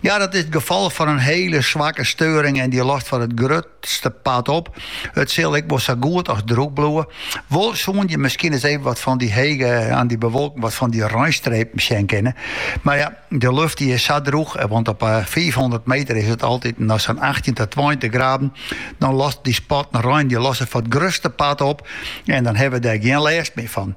Ja, dat is it gefal fan in hiele swakke steuring en dy lost foar it grutste part op. It sil ek wol sa goed as drûch bliuwe. Wol soene je miskien ris even wat fan dy hege aan dy bewolking wat fan dy reinstrepen sjen kinne. Mar ja, de lucht dy is sa drûch, want op 500 eh, meter is it altyd noch sa'n 18 tot 20 graden. Dan lost dy spatten rein dy losse foar it grutste part op en dan hebben we dêr gjin lêst mear fan.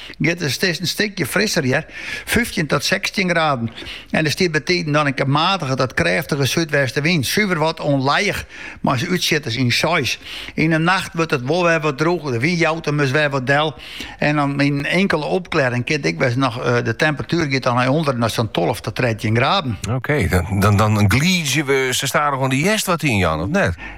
giet it is in stikje frisser hear, fyftjin tot sechstjin graden, en der stiet bytiden dan in kear matige tot krêftige súdwestewyn, suver wat ûnlijich, mei útsjitters in seis. Yn 'e nacht wurdt it wol wer wat drûger, de wyn jout him dus wer wat del en dan yn in inkele opklearring kin ek wêze noch de temperatuer giet dan nei ûnder nei sa'n tolve tot trettjin graden. Oké, dan glydzje we sa stadichoan de hjerst wat yn, Jan, of net?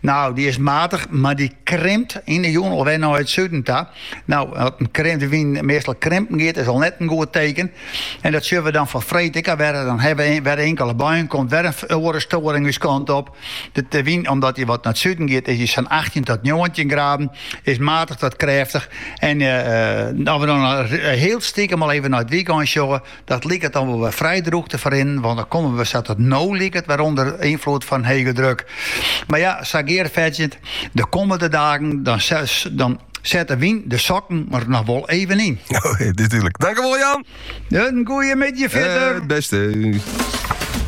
No, dy is matich, mar dy krimpt yn de jûn alwer nei it suden ta. No, as de wyn meastal krimpen giet, is al net in goed teken. En dat sjoch we dan foar freed ek al wer. Dan hawwe we wer inkele buien, komt wer in oare storing ús kant op. De wyn, omdat dy wat nei it suden giet, is dy sa'n achttjin tot njoggentjin graden, is matich tot krêftich. En as we dan hiel stikem al even nei it wykein sjogge, Dat liket dan wol wer frij droech te ferrinnen, want dan kommen we sa't it no liket wer ûnder ynfloed fan hege druk. Mar ja, sa Geart fertsjint, de kommende dagen dan, dan set de wyn de sokken der noch wol even yn. Oh, natuurlijk. Dankjewel Jan. Een goede middag verder. Eh, het beste.